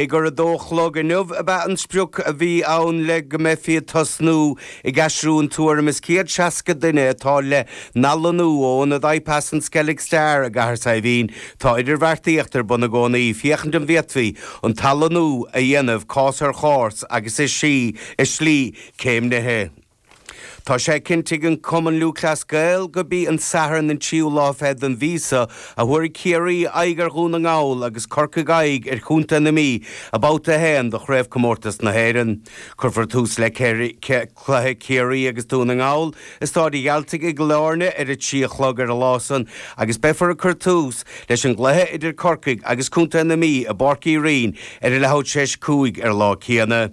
Ag a dó a chlog inniu ab ea an sprioc a bhí ann le go mbeifí ag tosnú ag aistriú an tuairim is céad seasca duine atá le n-athlonnú ó ionad IPAS an Skellig Star i gCathair Saidhbhín. Tá idirbheartaíocht ar bun i gcónaí féachaint an bhféadfaí an t-athlonnú a dhéanamh cás ar chás agus i slí céimnithe. Tá sé cinntithe ag an Cumann Lúthchleas Gael gurb í an Satharn an tríú lá fichead den mhí seo a thabharfaidh Ciarraí aghaidh ar Dhún na nGall agus Corcaigh aghaidh ar Chontae na Mí i mBabhta a haon de Chraobhchomórtas na hÉireann. Cuirfear tús le cluiche Chiarraí agus Dún na nGall i Stáid Mhic Gearailt i gCill Airne ar a trí a chlog ar an lá san agus beifear ag cur tús leis an gcluiche idir Corcaigh agus Contae na Mí i bPáirc Uí Rinn ar a leathuair tar éis a cúig ar an lá céanna.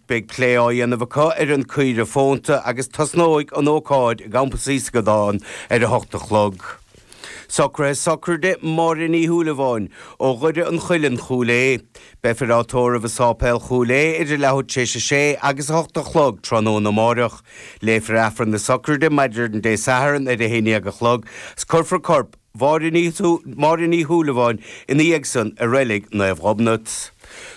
Beidh plé á dhéanamh acu ar an gcaoireoil fónta agus tosnóidh an ócáid i gCampas Íosagáin ar a hocht a chlog. Socruithe sochraide Máire Ní Shúilleabháin ó Dhoire an Chuilinn, Cúil Aodha. Beifear á tórramh i Sáipéal Chúil Aodha idir leathuair tar éis a sé agus a hocht a chlog tráthnóna amáireach. Léifear Aifreann na sochraide maidin Dé Sathairn ar a haon dhéag a chlog 's cuirfear corp Máire Ní Shúilleabháin ina dhiaidh san i Reilig Naomh Gobnait.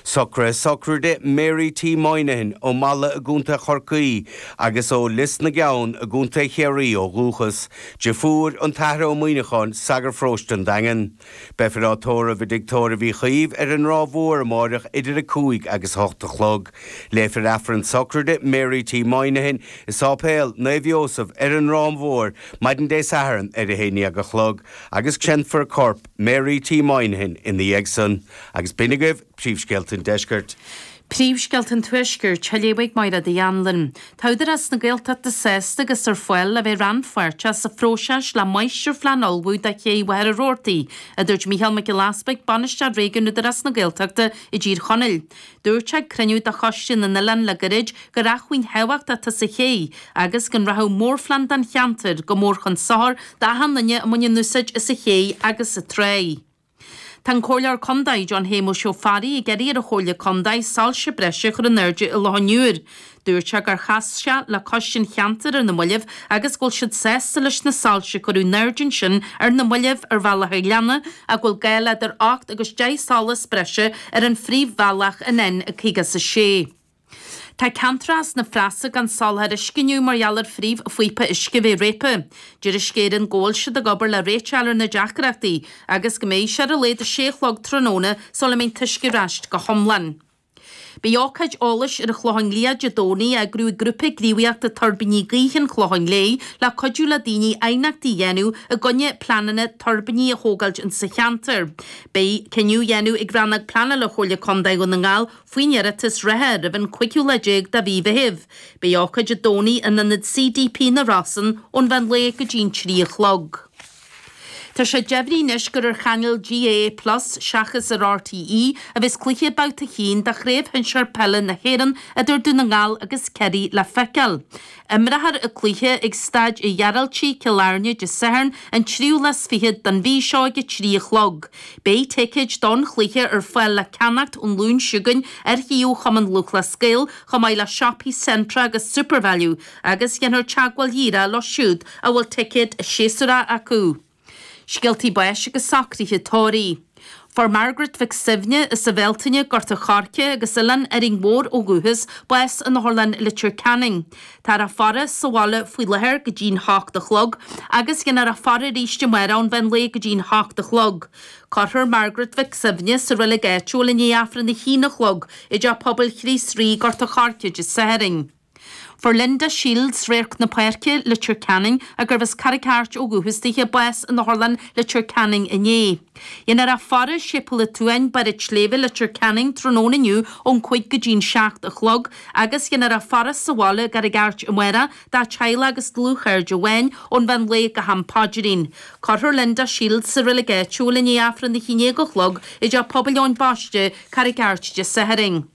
Socruithe sochraide Mary T. Moynihan ó Mhala i gContae Chorcaí agus ó Lios na gCeann i gContae Chiarraí ó dhúchas, deirfiúr an Athar Ó Muíneacháin, Sagart Paróiste an Daingin. Beifear á tórramh i dTigh Tórraimh Uí Chaoimh ar an Ráth Mór amáireach idir a cúig agus a hocht a chlog. Léifear Aifreann sochraide Mary T. Moynihan i Sáipéal Naomh Iósaf ar an Ráth Mór maidin Dé Sathairn ar a haon dhéag a chlog agus créamfar corp Mary T. Moynihan ina dhiaidh san agus b'in agaibh príomhscéalta an deiscirt. Príomhscéalta an tuaiscirt, á léamh ag Máiréad Uí Anluain. Tá Údarás na Gaeltachta sásta agus ar fáil le bheith rannpháirteach sa phróiseas le máistirphlean a ullmhú do ché Mhachaire Rabhartaigh, a dúirt Micheál Mac Giolla Easbuig, Bainisteoir Réigiún Údarás na Gaeltachta i dTír Chonaill. Dúirt sé ag cruinniú de Choiste na nOileán le gairid gur acmhainn thábhachtach atá sa ché agus go rachadh mórphlean don cheantar go mór chun sochair d'achan duine a bhaineann úsáid as an ché agus sa tráigh. Tá an Comhairleoir Contae, John Shéamuis Ó Fearraigh, ag iarraidh ar an Chomhairle Contae soilse breise a chur in airde i Loch an Iúir. Dúirt sé gur chas sé le coiste an cheantair ar na mallaibh agus go bhfuil siad sásta leis na soilse a cuireadh in airde ansin ar na mallaibh ar bhealach an ghleanna ach go bhfuil gá le idir ocht agus deich solas breise ar an phríomhbhealach an N56. Tá ceantracha sna Rosa gan soláthar uisce inniu mar gheall ar phríomhphíopa uisce bheith réabtha. Deir Uisce Éireann go bhfuil siad ag obair le réiteach a fháil ar na deacrachtaí agus go mbeidh sé ar a laghad a sé a chlog tráthnóna sula mbeidh an t-uisce ar ais go hiomlán. Beidh ócáid eolais ar an Chlochán Liath Dé Domhnaigh á eagrú ag Grúpa Gníomhaíochta Tuirbíní Gaoithe an Chlocháin Léith le cuidiú le daoine aighneachtaí a dhéanamh i gcoinne pleananna tuirbíní a thógáilt ins sa cheantar. Beidh cinneadh á dhéanamh ag Rannóg Pleanála Chomhairle Contae Dhún na nGall faoin iarratas reatha roimh an cúigiú lá déag de mhí Mheithimh. Beidh ócáid Dé Domhnaigh in Ionad CDP na Rosann ón mheán lae go dtí'n trí a chlog. Tá sé deimhnithe anois gur ar chainéal GAA plus seachas ar RTÉ a bheas cluiche Babhta 1 de Chraobh Shinsear Peile na hÉireann idir Dún na nGall agus Kerry le feiceáil. Imreofar an cluiche ag Staid Uí Ghearaltaigh, Cill Airne, Dé Sathairn an tríú lá 's fiche den mhí seo ag a trí a chlog. Beidh ticéid don chluiche ar fáil le ceannacht ón Luan seo chugainn ar shuíomh Chumann Lúthchleas Gael chomh maith le siopaí Centra agus Supervalu agus déanfar teagmháil dhíreach leo siúd a bhfuil ticéad séasúr acu. Scéaltaí Báis agus Socruithe Tórraimh. Fuair Margaret Mhic Suibhne, as an Bhealtaine, Gort an Choirce agus Oileán Árainn Mhór ó dhúchas, bás in Otharlann Leitir Ceanainn. Táthar á faire sa bhaile faoi láthair go dtí'n hocht a chlog agus déanfar a faire arís amárach ón mheán lae go dtí'n hocht a chlog. Cuirfear Margaret Mhic Suibhne sa reilig áitiúil i ndiaidh Aifreann a haon a chlog i dTeach Pobail Chríost Rí, Gort an Choirce, Dé Sathairn. Fuair Linda Shields, Radharc na Páirce, Leitir Ceanainn, a gurbh as Carraig Airt ó dhúchas di, bás in Otharlann Leitir Ceanainn inné. Déanfar a faire i Séipéal an tSuain, Barr an tSléibhe, Leitir Ceanainn, tráthnóna inniu ón cúig go dtí'n seacht a chlog, agus déanfar a faire sa bhaile i gCarraig Airt amárach, dá teaghlach agus dlúthchairde amháin, ón mheán lae go ham paidrín. Cuirfear Linda Shields sa reilig áitiúil i ndiaidh Aifreann a haon déag a chlog i dTeach Pobail Eoin Baiste, Carraig Airt Dé Sathairn.